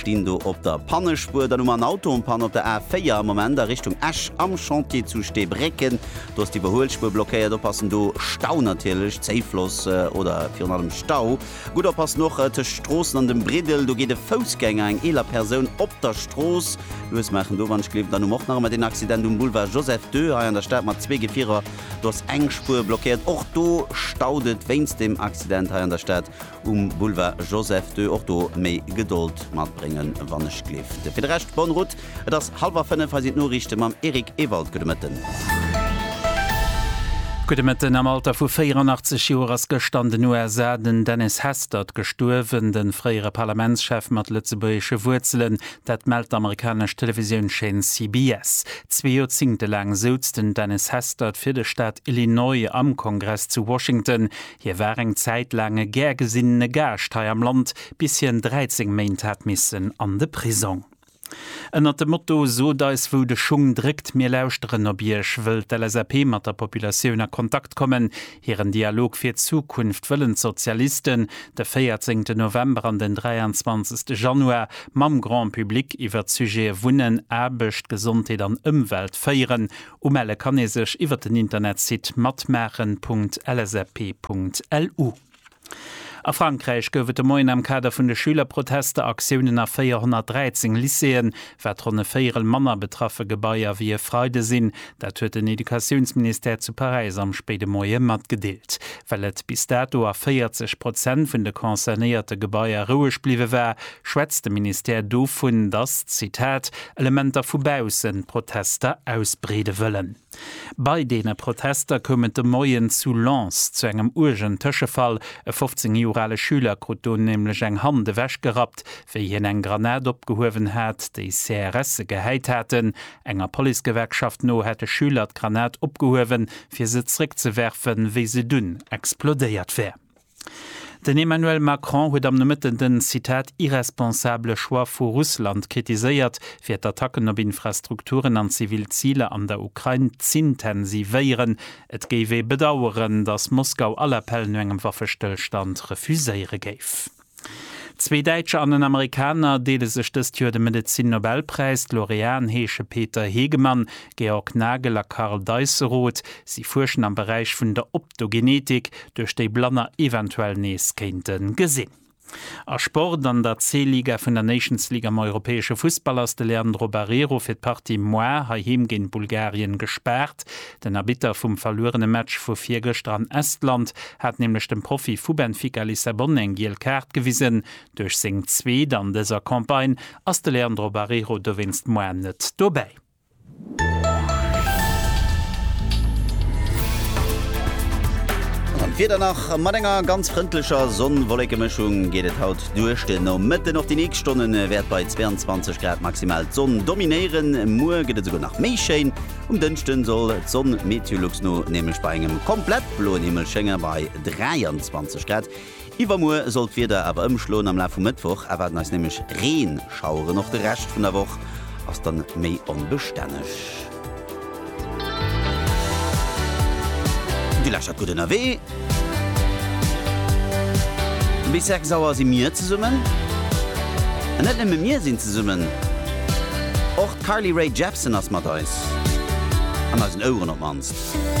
Stinn do op der Pannespuer, dann hu mer en Auto en panne op der A4 am Moment a Richtung Esch am Chantier zu Steebrécken. Do ass d'Iwwerhuelspuer blockéiert. Oppassen do, Stau natierlech, Zéifloss oder virun allem Stau. Gutt oppassen och tëscht Stroossen an dem Briddel, do geet e Foussgänger eng eeler Persoun op der Strooss luesmaachen. Do wann ech gleewen. Dann hu mer och nach ëmmer deen Accident um Boulevard Joseph ii hei an der Stad mat zwee Gefierer. Do ass eng Spuer blockéiert. Och do staut et wéinst deem Accident hei an der Stad. Um Boulevard Joseph ii och do méi Gedold matbréngen wann ech gleeft. Fir de Rescht bonne route, et ass hallwer 5, hei sinn d'Noriichte mam Eric Ewald. Gudde Mëtten. Gudde Mëtten. Am Alter vu 84 Joer ass gëschter an den USA den Dennis Hastert gestuerwen, de fréiere Parlamentschef mat lëtzebuergesche Wuerzelen. Dat mellt d'amerikanesch Televisiounscheen CBS. Zwee Joerzingte laang souz den Dennis Hastert fir de Staat Illinois am Kongress zu Washington. Hie war eng Zäit laang e gär gesinnene Gaascht hei am Land, bis hien 13 Méint hat missen an de Prisong. Ënnert dem Motto Sot eis wou de Schung dréckt, mir lauschteren op iech wëll d'LSAP mat der Populatioun a Kontakt kommen. Hiren Dialog fir d'Zukunft wëllen d'Sozialisten de 14 de November an den 23 de Januar mam Grand Public iwwert d'Sujete Wunnen, Aarbecht, Gesondheet an Ëmwelt féieren. Umelle kann ee sech iwwer den Internetsite matmaachen.lsap.lu. A Frankräich gouf et de Moien am Kader vun de Schülerprotester Aktiounen a 413 Lycéeën, wat ronn e Véierel manner betraffe Gebaier wéi e Freide sinn. Dat huet den Educatiounsministère zu Paräis am spéide Moie matgedeelt. Well et bis dato a 40 Prozent vun de concernéierte Gebaier roueg bliwwe war, schwätzt de Ministère dovun, datt, Zitat, Elementer vu baussen d'Protester ausbreede wëllen. Bei deene Protester koum et de Moien zu Lens zu engem uergen Tëschefall. E 15 Joer ale Schüler krut do nämlech eng Hand ewechgerappt, wéi hien eng Granat opgehuewen hat, déi CRSe gehäit haten. Enger Policegewerkschaft no hätte Schüler d'Granat opgehuewen, fir se zeréckzewerfen, wéi se dunn explodéiert wär. Den Emmanuel Macron huet am Nomëtten den, Zitat, irresponsable Choix vu Russland kritiséiert, fir d'Attacken op Infrastrukturen an zivil Ziler an der Ukrain z'intensivéieren. Et géif ee bedaueren, datt Moskau all Appell no engem Waffestëllstand refuséiere géif. Zwee Däitscher an en Amerikaner deele sech dëst Joer de Medezin-Nobelpräis. D'Laureaten heesche Peter Hegemann, Georg Nagel a Karl Deisseroth. Si fuerschen am Beräich vun der. D'Ogenetik, duerch déi Blanner eventuell nees kéinte gesinn. A Sport, An der C-Liga vun der Nations League am europäesche Fussball ass de Leandro Barreiro fir d'Partie moar heiheem géint Bulgarien gespaart. Den Arbitter vum verluerene Match vu virgëschter an Estland hat nämlech dem Profi vu Benfica Lissabon eng giel Kaart gewisen. Duerch seng zweet an dëser Campagne ass de Leandro Barreiro dowéinst moar net dobäi. An d'Wieder nach, Mat enger ganz frëndlecher Sonn-Wollekemëschung geet et haut duerch de Nomëtten. Och déi nächst Stonne wäert bei 22 Grad maximal d'Sonn dominéieren. Muer gëtt et esouguer nach méi schéin. Um Dënschde soll d'Sonn MeteoLux no nämlech bei engem komplett bloen Himmel schéngen, bei 23 Grad. Iwwermuer soll d'Wieder awer ëmschloen, am Laf vum Mëttwoch erwaarden eis nämlech Reenschaueren. Och de Rescht vun der Woch ass dann méi onbestänneg. Dir lächert gutt ënnerwee. Bis 6 Auer si mir zesummen. An net nëmme mir sinn zesummen, och d'Carly Rae Jepsen ass mat eis, an eisen Oueren op d'mannst.